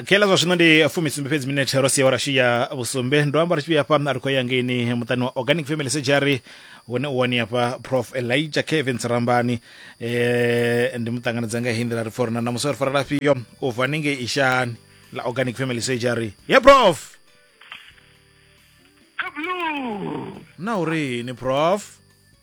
kela zwa zwino ndi fumisumbe fhedzi minethe ro sia wa rashi ya vhusumbe ndo amba ri tshi vhuya hafha ri khou ya ngeini muṱani wa organic family surgery hune u wani hafha prof elijah kevin sirambani eh, ndi muṱanganedza nga hindi la ri forana na musori fara lafhio u bva ninge ishani la organic family surgery ya prof Kablu! na uri ni prof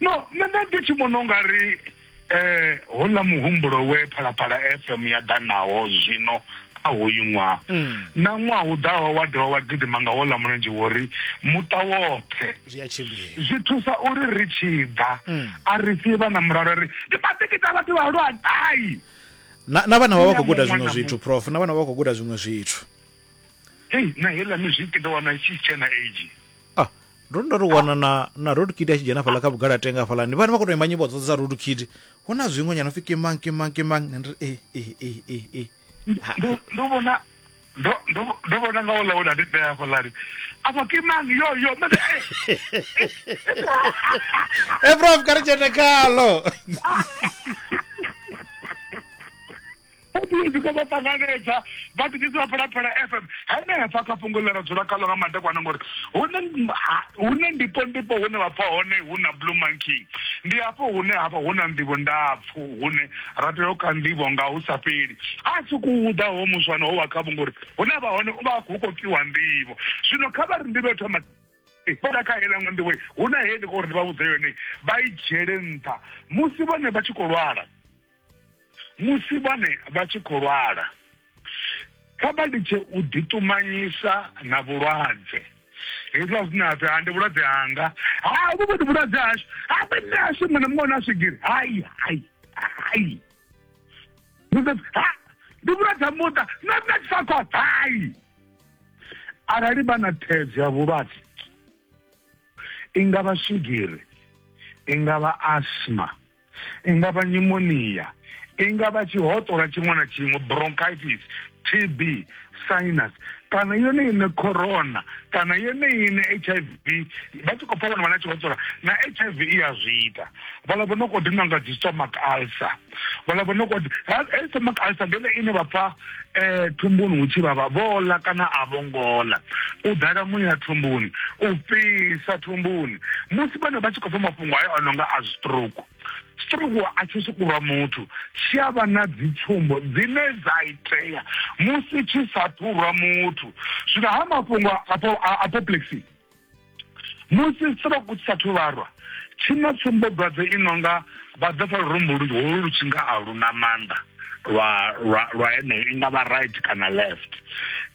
no nṋe nda ndi tshi vhona u nga ri eh hola muhumbulo we phalaphala fm ya ḓa nawo zwino kha hoyu ṅwaha mm. na ṅwaha u ḓaho wa dovha wa gidima nga wola mulenzhe wo ri muṱa woṱhe zwi thusa uri ri tshi ḓa mm. a ri si vha na mulalo ri ndi matikita vhathu vha lwa gai na vhana vha vha khou guda zwiṅwe zwithu prof na vhana vha khou guda zwiṅwe zwithu hei na heiḽa mizwiki ndo wana tshi tshena age ah ndo ndo ri wana na na road kid a tshi dzhena fhala kha vhugala tenga hafhalani vhane vha khou tou imba nyimbo dzoṱhe dza road kid hu na zwiṅwe nyana upfi kimang kimang kimang ndi ri e e e e e ndo ndo vhona ndo ndo ndo vhona nga ola ola ndi tea hafhalani afha kimang yo yo nṋe ndi e e prof kha ri dzhene khalo Fhedzi ko vha ṱanganedza vha ḓidzisa vha Phalaphala FM henefha kha fhungo ḽe ra dzula khaḽo nga madekwana ngori hune hune ndipo ndipo hune vha pfa hone hu na Blue Monkey ndi hafho hune hafha hu na nḓivho ndapfu hune ra tea u ka nḓivho nga hu sa fheli a si ku uḓa ho muswana ho wa khavho ngori hune vha hone u vha hu khou pfiwa nḓivho zwino kha vha ri nḓivho yo thoma fhela kha heiḽa nga nḓivho hu na hei ndi khou ri ndi vha vhudze yone vha i dzhiele nṱha musi vhone vha tshi khou lwala musi vhone vha tshi khou lwala. Kha vha litshe u ḓiṱumanyisa na vhulwadze. Hezwiḽa zwine ha pfi ha ndi vhulwadze hanga, ha vhu vhoni vhulwadze hashu, ha vhe nṋe hashu muṅwe na muṅwe na swigiri. Hai, hai, hai. Musi ha ndi vhulwadze ha muṱa, nṋe nṋe tshi sa khou hai. Arali vha na thaidzo ya vhulwadze, i nga vha swigiri, i nga vha asma, I nga vha nyumonia, i nga vha tshihoṱola tshiṅwe na tshiṅwe, bronchitis, TB, sinus kana yone ine corona kana yone ine hiv vha tshi khou pfa vhana vha na tshihoṱola na hiv i ya zwi ita vhala vho no khou dinwa nga dzi stomach ulcer vhala vho no khou stomach ulcer ndi yone ine vha pfa eh thumbuni hu tshi vhavha vho ḽa kana a vho ngo ḽa u ḓala muya thumbuni u fhisa thumbuni musi vhana vha tshi khou pfha mafhungo ayo a nonga a stroke stroke a tshi sukurwa muthu tshi a vha na dzi tsumbo dzine dza itea musi tshi sa ṱhurwa muthu zwino ha mafhungo a apoplexy musi stroke u sathu vharwa tshi na tsumbodwadze i no nga vha ḓo pfa lurumbu holu lu tshi nga a lu na maanḓa lwa lwa lwa heneyo i nga vha right kana left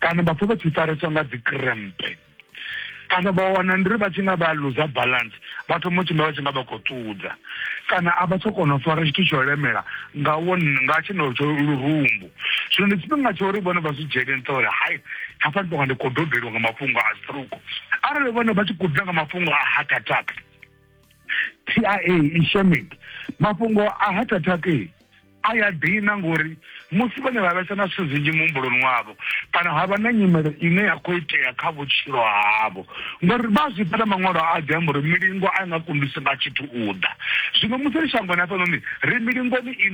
kana vha pfa vha tshi fareswa nga dzi krempe kana vha wana ndi ri vha tshi nga vha luza balance vha thoma u tshimbila vha tshi nga vha khou ṱudza kana a vha tsha kona u fara tshithu tsho lemela nga wo nga tshenelo tsho lurumbu zwino ndi tshifhinga tsha uri vhone vha zwi dzhiele nṱha uri hai hafha ndi tonga ndi khou dobelwa nga mafhungo a stroke arali vhone vha tshi khou ḓa nga mafhungo a heart attack tia ishemic mafhungo a heart attack a ya dina ngori musi vhone vha vhesa na zwithu zwinzhi muhumbuloni wavho kana ha vha na nyimelo ine ya khou itea kha vhutshilo havho ngori vha zwi pfala maṅwalo a ḓi amba uri milingo a i nga kundisi nga tshithu u ḓa zwino musi ri shangoni hafhanoni ri milingoni ine